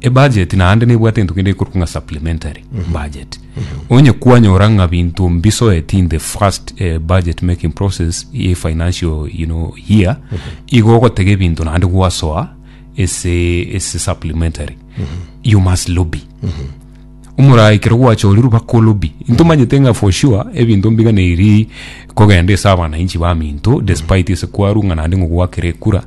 Ebudget naende nebwate egento kende gekorokwa ng'a supplementary budget. Onye kwanyora ng'a binto mbisoeti in the first eh, budget making process ye financial you know, year, igo ogotega ebinto naende gwasoa ase ase supplementary. You must lobby. Omoraai ekero gwachorirwe bakolobi ntomanyete ng'a for sure ebinto mbiganeiri kogenda ase abananchi baminto despite ase kwarwa ng'a naende ng'o gwakere ekura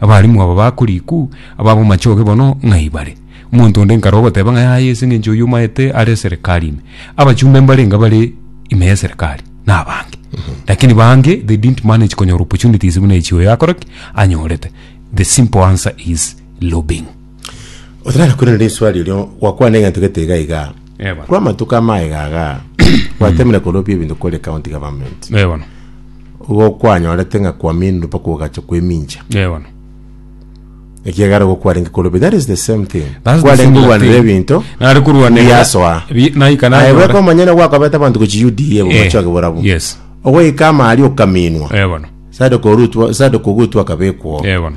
Abalimu aba ba koriku, ab'abamachoge bono ng'ai bare? Omonto onde nkarwa ogoteba ng'a yaya ase engencho oyio omaete are eserekari ime. Abachumbe mbarenge bare ime y'eserekari nabange. Lakini bange they didn't manage konyora opportunities buna echi oyo akore ki? Anyorete. The simple answer is lobbying. Otara kwerana riswali erio gwakwana egento gete iga iga. Eh, bono. kw'amatuko amaye gaga gwatemire korobia ebinto kore county government Eh, bono. igo kwanyorete ng'a kwaminire mpaka ogacha kwemincha Eh, bono. ekiagera igo kwarenge korobia that is the same thing That's the kwarenge similar korwanera thing. ebinto Nare korwanera- Biasoa. Bi- naika aye nanyora. bweka omanyene gwakobeta abanto gochi uda Eh, bomachoke borabu yes. ogoika amari okaminwa Eh, bono. sade korutwa sade kogutwa akabekwo Eh, bono.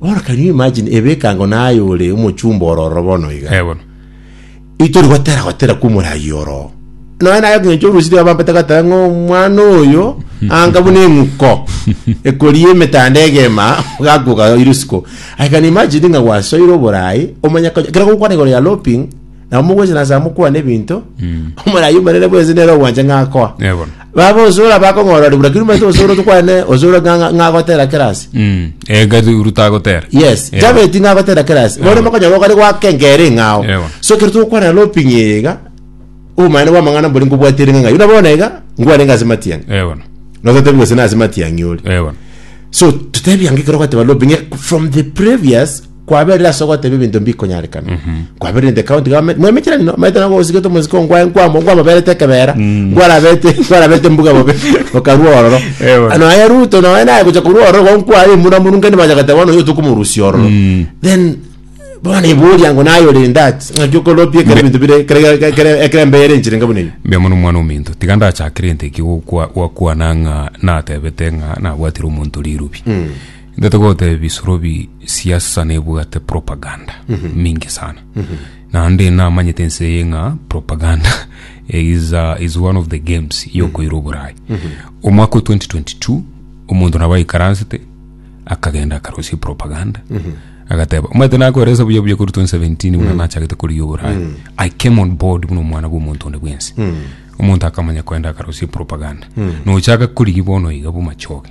Bono can you imagine ebekango naye ore omochumba oro ororo bono iga Eh, bono. itori gotera gotera kwa omorayi oro nonya naye ng'encho orusiri abampete goteba ng'a omwana oyo anga buna eng'uko ekoria emetanda egema gakoka iri isiko i can imagine ng'a gwasoire oborayi omanye konya kero gokwana igoro ya loping nabo mogocha nase amo kwane ebinto omoraia omonene bwense nere ogwancha ng'a akoa Eh, bono. baba osora bakong'orori buna kiri omanyete osoro tokwane osoro ng'a- ng'a- ng'agotera kerasi Mm. Eh, gari rutagotera yes Eh, jabeti ng'agotera kerasi bono Ewa. mokonyora okare gwakengere ng'ao Ewa. so kero togokwana loping iga obomanene bwa amang'ana mbori nkobwatire ng'a yuna bono iga ngwane ng'ase matiang'i eh, bono. nototebi gose nase matiang'i ore Eh, bono. so totebi ange kero gwateba loping from the previous kwaberire ase ogoteba ebinto mbikonyarekana kwaberire in the county government mwemecherani no maete nago osigete omosike onkwaye nkwamo nkwamoberete ekebera nkwarabete nkwarabete mbuga bobe okarua ororo Ewe. ano aye ruto naye naye gocha korua ororo igo nkwaye muna munu nkende bacha goteba bono oyo tokomorusia ororo then bono iburia ngo naye ore in that ng'aki okoropia ekero ebinto bire ekero- ekero- ekero- ekero embeyo ere enchire ngabuna ebi mbe mono omwana ominto tiga ndachakere nte ki gokwa- gwakwana ng'a natebete ng'a nabwatire omonto rirubi Intwe togoteba bisorobi siasa sana ebwate propaganda mingi sana naende namanyete ense eye ng'a propaganda is, uh, is one of the games yokoira oborai omwaka o 2022 omonto nabo aikaransete akagenda akarosia propaganda agateba omanyete nakoeresa buya buya kori 2017 buna nachagete korigia oborai i came on board buna omwana bwa omonto onde bwensi omonto akamanya koenda akarosia propaganda nochaka korigia bono iga bomachoge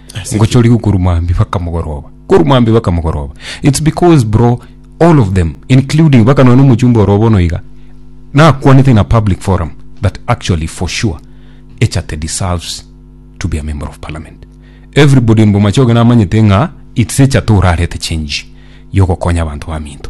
Ase ki? ngochorigwe korwa mwambia mpaka mogoroba korwa mwambia mpaka mogoroba its because bro all of them including mpaka nonya na omochumba oro bono iga nakwanete in a public forum that actually for sure echate deserves to be a member of parliament everybody in bomachoge namanyete ng'a its echate orarete change yogokonya abanto baminto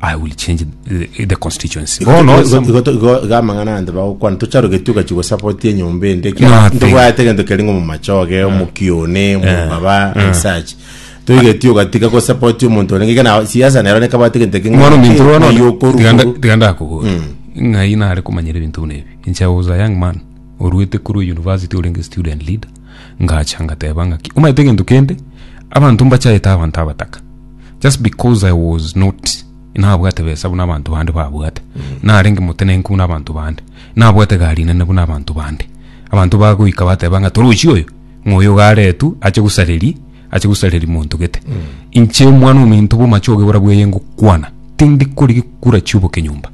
I will change the, the constituency. Bono Because some- igo to- igo igo amang'ana ande bagokwana tocharogetie ogachi gosapoti enyomba ende Nothing. ntobwate egento keri ng'o momachoge omokione omobaba and such toigetie ogatiga gosapoti omonto orenge kana siasa nero nekabate egento eke Mwana ominto rwa nono, tiganda- yokorugo tiganda akogora ng'ai nare komanyera ebinto buna ebi inche I was a young man oruete korwa university orenge student leader ngacha ngateba ngaki omanyete egento kende abanto mbachayete abanto abataka just because i was not nabwate besa buna abanto bande babwate narenge motenenku buna abanto bande nabwate gari nene buna abanto bande abanto bagoika bateba ng'a torochi oyo ng'oyo garetu ache gosareri ache gosareri monto gete inche omwana ominto bomachoge bora bweye ngokwana tindi kori gikura chioboke nyomba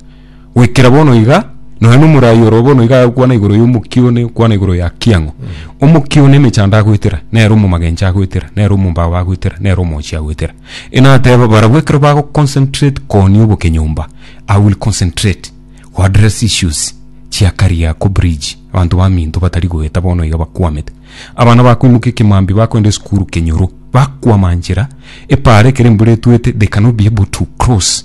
goikera bono iga nonya na omoraai oro bono iga agokwana igoro ya omokia one okwana igoro ya kiang'o omokia one emechando agoetera nere omomagencho agoetera nere omombao agoetera nere omochie agoetera enateba barabwo ekero bago concentrate koonia obokenyomba I will concentrate go address issues chia kariako bridge abanto baminto batari goeta bono iga bakwamete abana bakoimoka ekemambia bakoenda esukuru kenyoro bakwama nchera epaara ekero embura etwete they cannot be able to cross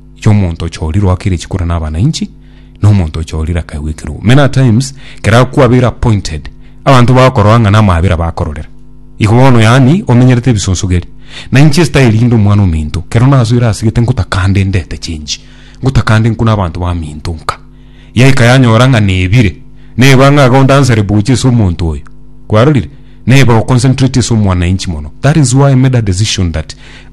y'omonto ochorirwe akire chikura na abana inchi, na omonto ochorirwe akaigwa ekirubu. Many a times, kera kwabeire appointed, abanto bakorora ng'a namabera bakororera. Igo bono yaani, omenyerete ebisonsogeri. Na inche style inde omwana ominto, kero nasoire asegete ngotaka nde ndete change. Ngotaka nde nkune abanto baminto nka. Yaika yanyora ng'a nebire, neba ng'a iga ondansere bochia ase omonto oyo. Kwarorire? Neba oconcentrate ase omwanainchi mono. That is why I made a decision that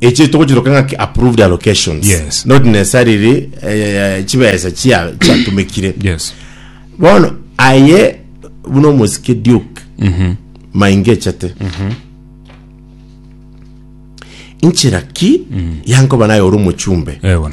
echi togochiroka ng'aki approved allocations Yes. not necessarily eh, eh, chibesa chia- chiatumekire yes bono aye buna omosike duke maingechete inchera ki yankoba naye ore omochumbe ewe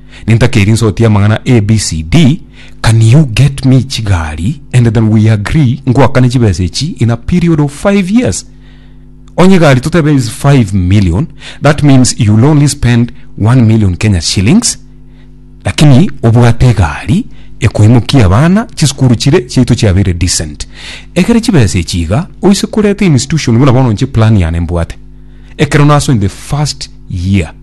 nintakeri nsotie amang'ana ABCD can you get me chigari and then we agree ngwakane chibesa echi in a period of 5 years onye gari totebe is 5 million that means you'll only spend 1 million Kenya shillings lakini obwate egari ekoimokia abana chisukuru chire chiaito chiabeire decent ekere chibesa echi iga oise koreta institution buna bono nche plan yane mbwate ekero naso in the first year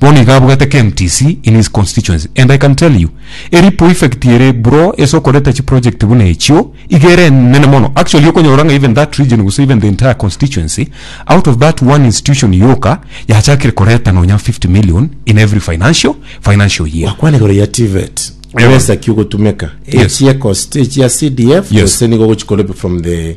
Bono iga abugate KMTC in his constituency and I can tell you eripo effect ere bro ase okoreta chi project buna echio iga ere enene mono actually okonyora ng'a even that region gose even the entire constituency out of that one institution yoka yachakire koreta nonya 50 million in every financial financial year Bakwane igoro ya TVET. Ebesa ki ogotumeka? Yes. Echie cost echia CDF Yes. gose nigo ogochikora from the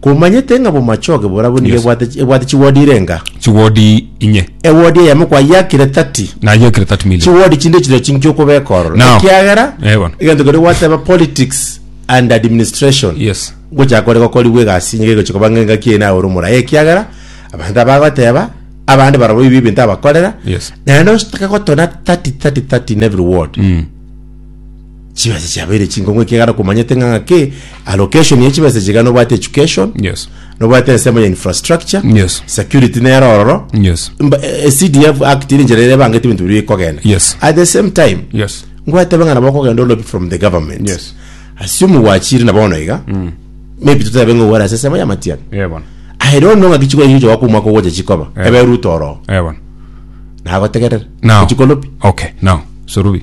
Komanyete ng'a bomachoge borabwo nigo Yes. ebwate ebwate chiwodi irenga. Chiwodi inye. Ewodi eyemo kwayakire 30. Nayekire 30 million. Chiwodi chinde chire chinki okobeka ororo. Now. Ekiagera Eh, bono. egento keria gwateba politics and administration. Yes. Ngochaka kore gokorigwa egasi nigo egochia koba ng'engaki eye naye ore omorai. Ekiagera abanto abagoteba abande barabwo ebi ebinto abakorera. Yes. Naende ositake gotona 30 30 30 in every ward. Mm. chibesa chiabeire chinkongo ekegara komanyete ng'a ng'ake allocation ya chibesa chiga nobwate education Yes. nobwate ensemo ya infrastructure Yes. security nere ororo Yes. Mba- eh, eh, cdf act iri njera erebangete ebinto biri bikogenda Yes. at the same time Yes. ngwatebe ng'a nabo okogenda olobi from the government Yes. assume gwachire na bono iga maybe tutabe ng'a owara ase ensemo ya matian Eh, bono. ahere ono ng'a kichiko eyo jogoka omwaka ogocha chikoba Eh. ebe ruto oro Eh, bono. nagotegerera Now. kichiko olobi Okay, now. Sorubi.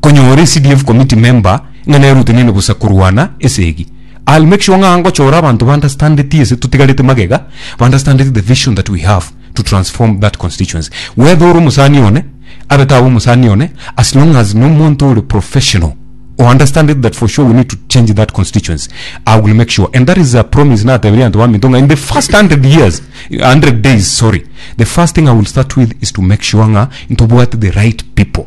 Konya ore CDF committee member ng'a nerutenene bosa korwana esegi. I'll make sure ng'a ngochora abanto ba understandeti ese totigarete magega, ba understandeti the vision that we have to transform that constituency. Whether ore omosani one, abe tabe omosani one, as long as no monto ore professional o understandeti that for sure we need to change that constituency, I will make sure. And that is a promise nateberia abanto ba Minto ng'a in the first 100 years, 100 days, sorry, the first thing I will start with is to make sure ng'a ntobwate the right people.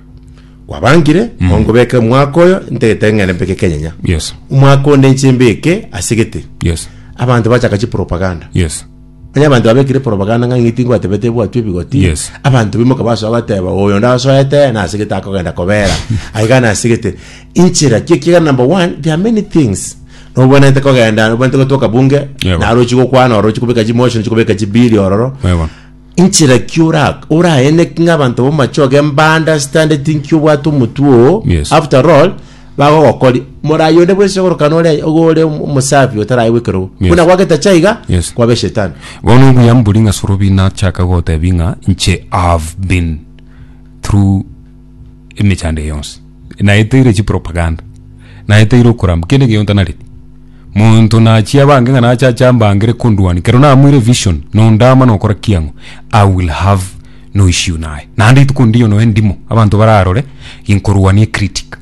Kwabangire, mao nkobeke omwaka oyo ntagete ng'ende mbeke ekenyenya. Yes. Omwaka onde inche mbeke ase gete. Yes. Abanto bachaka chipropaganda. Yes. Onye abanto babekire propaganda ng'a ng'iti ngwatebete bwatwe ebigoti. Yes. Abanto bimoka basoa bateba oyo ndasoete na ase gete akogenda kobera. Aiga na ase gete. Inchera ki ekiagera number one there are many things. Nobwenerete kogenda nobwenerete gotoka bunge. Yebo. Naro ochie gokwana oro ochie kobeka chimotion ochie kobeka chibill ororo. Yebo. Inchera ki ora oraeneke ng'a abanto b'omochoge mbande standeti nki obwate omotwe oo Yes. after all bagogokori morayi onde bwese ogorokana ore ogo ore omosafi otaraye gwekera obo Yes. buna gwageta chaiga Yes. kwabe shetani bono obuya mbori ng'a sorobi nachaka gotebia ng'a inche have been through emechando eye yonsi naye etaire chipropaganda naye etaire okoramba kende geyonta nari monto nachia abange ng'a nacha acha mbangere konduani kero namoire vision nondama nokora kiang'o i will have no issue naye naende rituko ndiyo noe ndimo abanto bararore inkoruania critic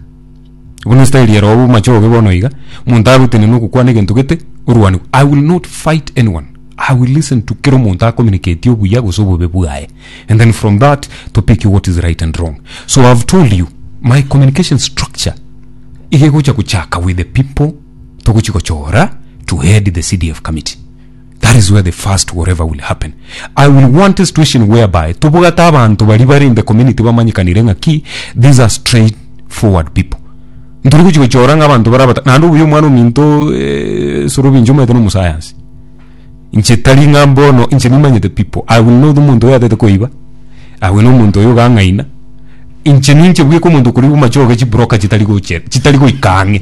Bono estaili ero obu mache obe bono iga, omonto agotine na ogokwana egento gete, orwane. I will not fight anyone. I will listen to kera omonto acommunicatie obuya gose obobe bwaye. And then from that to pick what is right and wrong. So I have told you, my communication structure iga egocha gochaka with the people togochi gochora to head the CDF committee. That is where the first whatever will happen. I will want a situation whereby tobogata abantu bari bari in the community bamanyikanire ng'a ki these are straight forward people. Nturi gochi gochora ng'a abantu barabata naende obuya omwana ominto eh, sorobinjo omanyete na omusayansi. Inche tari ng'a mbono inche nimanyete people. I will know the omonto oyo atete koiba. I will know omonto oyo ogang'aina. Inche ninche bweka omonto okori omachoge chibroka chitari goche chitari goika ang'e.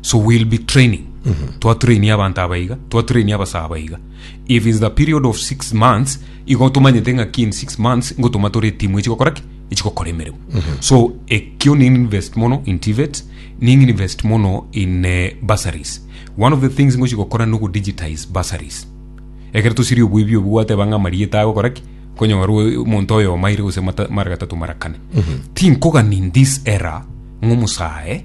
so we'll be training twatrainia abanto aba iga twatrainia abasaba aba iga if is the period of six months igo tomanyete ng'aki in six months ngotoma tore etimu echigokora ki echigokora emeremo so ekio ni invest mono in tivet ni invest mono in eh, bursaries one of the things ngochigokora ni ogodigitize bursaries ekero tosiri oboibi obu gwateba ng'a amarieta agokora ki konyora oe- omonto oyo omaire gose mata- mara gatato mara kane tinkogani in this era ng'omosae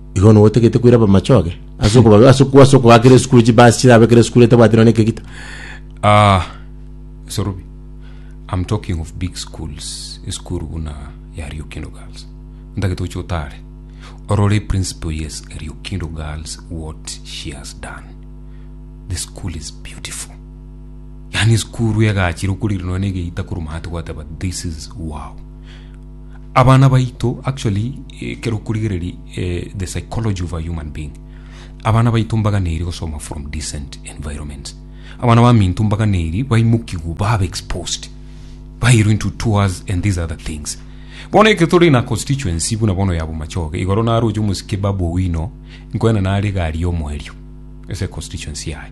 Igo nigo otagete koira bamachoge ase okoba- ase okwa- ase okoa kera esukuru chibasi chirabe kera esukuru etabwati nonye ekegita Ah, Sorubi, I'm talking of big schools, esukuru buna ya Riokindo Girls. Ntagete oche otare. Orore principal yes Riokindo Girls what she has done. The school is beautiful. Yani esukuru egachire okorire nonye egeita koruma ate gwateba this is wow. Abana baito actually ekero okorigereria the psychology of a human being abana baito mbaganeiri gosoma from decent environments abana baminto mbaganeiri baimokigwe babe exposed bairwe into tours and these other things bono eke tore na constituency buna bono yabo machoge igoro naroche omosike babu owino nkoena nare gari omoerio ese constituency yaye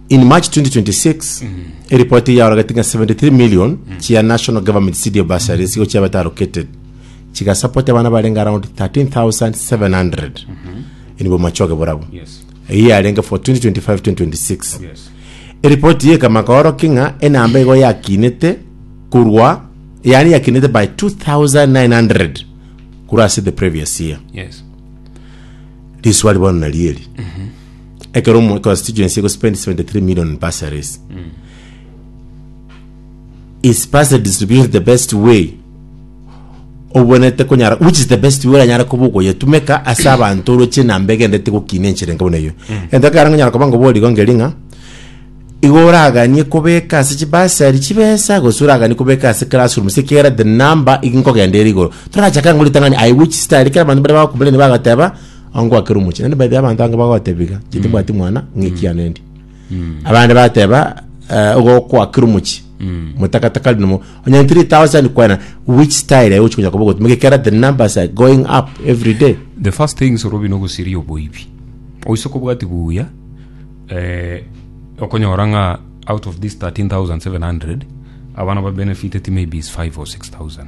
In March 2026, eripoti yaorogetie ng'a 73 million chia national government CDF bursaries igo chiabete allocated, chigasapoti abana barenge around 13,700 in bomachoge borabwo. Yes. Eyio yarenge for 2025-2026. Yes. Eripoti eye ekama koorokia ng'a enamba igo yakinete korwa yaani yakinete by 2900 korwa ase the previous year. Yes. Riswali bono nari eri ekero omo- constituency egospend 73 million in bursaries is bursary distribution the best way obwenerete konyara which is the best way oranyare koba ogoyetumeka ase abanto oroche enamba egendete gokina enchera enke buna eyio egento ekero nkonyara koba ngoborie igo nkeri ng'a igo oraganie kobeka ase chibasari chibesa gose oraganie kobeka ase classroom gose kera the number igo nkogenda ere igoro torachaka ng'o ritang'ani i which star ekero abanto baria bagokomplaini bagateba Ongo akere omochie. Naende by the way abanto abange bagotebiga, inche timbwati mwana, ng'a ekiana endi. Abande bateba, eh, ogo kwakire omochie. Motakataka rinde mo. Onye 3000 kwena, which style aye ochi konya koba ogotuma? Gekera the numbers are going up every day. the first thing soro bino gosiria oboibi oise kobwati buya eh, okonyora ng'a out of this 13700 abana ba benefited maybe is 5 or 6000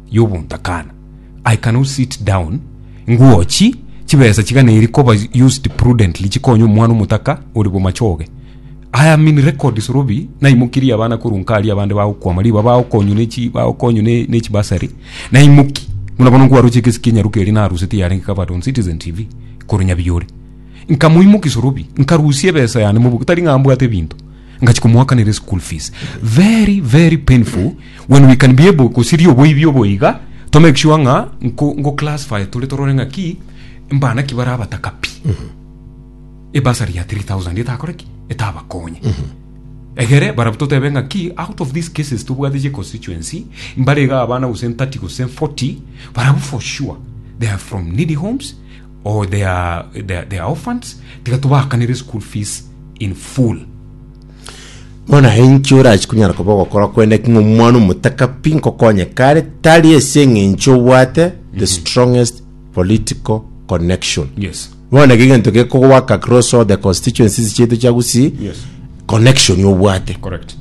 y'obontakana. I cannot sit down ngochi chibesa chigana eri koba used prudently chikonya omwana omotaka ore bomachoge. I am in record sorobi naimokirie abana korwa nkari abande bagokwama riba bagokonywa nechi bagokonywa ne- nechi basari naimoki buna bono nkwaroche ekesi kia nyaruka eri narusete yarenge covered on citizen tv korwa nyabiyore nkamoimoki sorobi nkarusia ebesa yane mobugo tari ng'a mbwate ebinto ngachia komoakanera eschool fees very very painful when we can be able gosiria oboibi obo iga to make sure ng'a nko- ngo classify tore torore ng'a ki mbana ki bare abataka pi ebasari ya 3000 etakore ki etabakonye egere barabwo totebe ng'a ki out of these cases tobwate che constituency mbare iga abana gose 30 gose 40 barabwo for sure they are from needy homes or they are, they are, they are orphans tiga tobakanere school fees in full Bono enki orachi kunyara koba ogokora kwende king'a omwana omotaka pi nkokonye kare tari ase eng'encho obwate the strongest political connection yes bono ege egento gekogwaka across all the constituencies chiaito chia Gusii Yes. connection obwate correct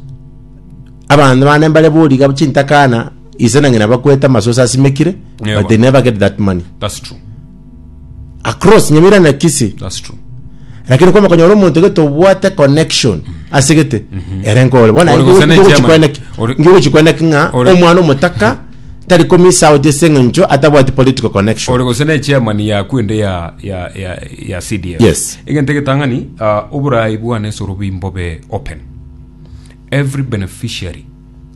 abanto bane mbare boriga chintakana Ise na ng'ina bakwete amasoso asimekire, Ewa. but they never get that money. That's true. Across Nyamira na Kisii. That's true. Lakini kwama konyora omonto gete obwate connection ase gete ere nkore. Bona Ore gose ne chairman. Ore- ngigochikweneki ng'a Ore- omwana omotaka tari komisa out ase eng'encho atabwati political connection. ore gose ne chairman ya kwende ya ya ya ya CDF Yes. egente getang'ani uh, oborai bwane soro bimbobe open every beneficiary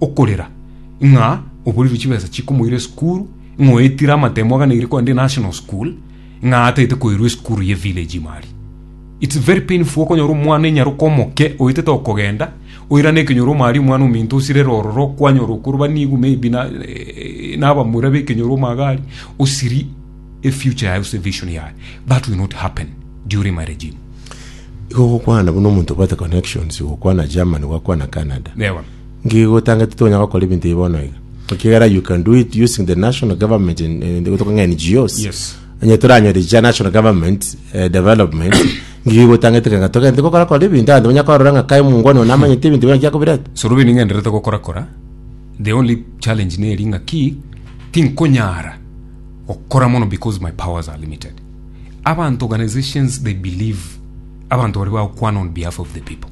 okorera ng'a oborirwe chibesa chikomoira esukuru, ng'a oetire amatemo aganeirie kogenda enational school, ng'a ataete koirwa esukuru ye village ime aria. It's very painful okonyora omwana enyaroka omoke oetete okogenda, oirane ekenyoro ime aria omwana ominto osirere ororo kwanyora okorobani igu maybe na eh, nabamura bekenyoro ime iga aria, osiri efuture yaye gose evision yaye. That will not happen during my regime. Igo gokwana buna omonto obwate connections, gokwana Germany, gwakwana Canada. Ewa. Nki gotanga titonya gokora ebinto ebi bono iga? Ekiagera you can do it using the national government in, in, gotoka ng'a NGOs. Yes. Onye toranyore cha national government eh, development ngi gotangete kanga togende gokora kora ebinto ande bonya korora ng'a kai mungwani ona amanyete ebinto bina kiakobirete. sorobi ning'enderete gokorakora the only challenge neri ng'a ki tinkonyara gokora mono because my powers are limited abantu organizations they believe abantu bari bagokwana on behalf of the people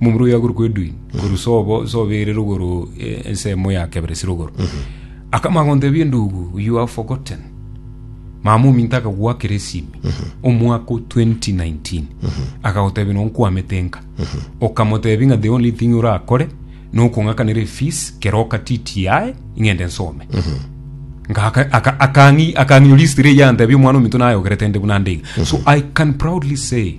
Momura oyo agorokwa Edwin, korwa sobo sobo ere rogoro eh, ensemo ya kebere si rogoro. Akama agontebia endugu, you are forgotten. Mama ominto akagoakera esimi omwaka o 2019 akagotebia no nkwamete nka okamotebia ng'a the only thing orakore nokong'akanera efees kero okatiti yae ing'ende nsome Nga aka- aka- akang'i- akang'inyoria history eye antebia omwana ominto naye ogerete nde buna ndeiga so i can proudly say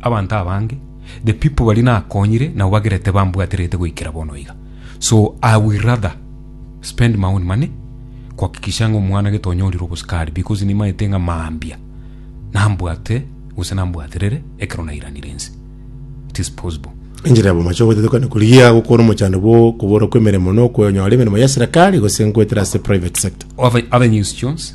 Abanto abange, the people baria nakonyire nabo bagerete bambwaterete goikera bono iga. So I will rather spend my own money kuhakikisha ng'a omwana gete onyorire obosukari because nimaete ng'a mambia nambwate gose nambwaterere ekero nairanire ense. It is possible. Enchera ya bomochie ogotetokana korigia gokora omochando bwo koborwa kw'emeremo na okonyora emeremo ya serekari gose goetera ase private sector. Other, other news, Jones.